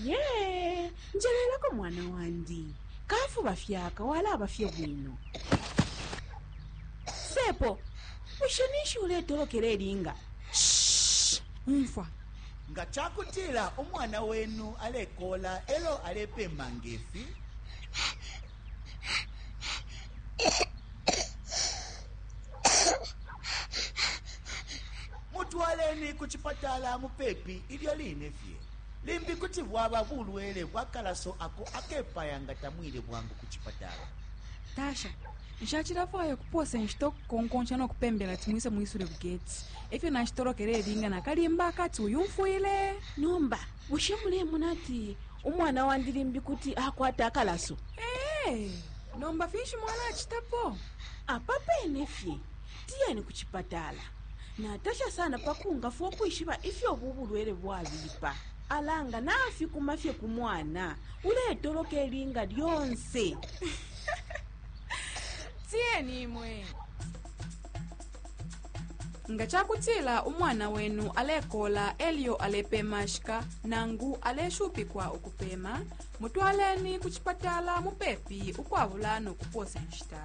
ye njelelako mwana wandi kafuba fyaka walaba fye bwino sepo bushe ninshi uletolokela elinga umfwa nga ca kutila umwana wenu alekola elo alepema ngefi Mutwaleni ku cipatala mupepi ilyo line fye. Limbi kuti bwaba bulwele bwa kalaso ako akepaya nga tamwile bwangu ku cipatala. Tasha, Nshacilafwaya ukupoosa inshita ukukonkonsha no kupembela ati mwise mwisule ku geti. E fyo nashitolokela ilinga na kalimba akati uyumfwile! Nomba bushe mulemona ati umwana wandi limbi kuti akwata akalaso? Ee! Nomba finshi mwalacitapo? Apa pene fye Tiyeni ku cipatala. Natasha sana pa kungafwa ukwishiba ifyo ubu bulwele bwabipa. Ala nga nafikuma fye ku mwana, uletoloka ilinga lyonse. Tiyeni imwe. Nga ca kutila umwana wenu alekoola e lyo alepeemashika nangu aleshupikwa ukupeema, mutwaleni ku cipatala mupepi ukwabula no kupoosa inshita.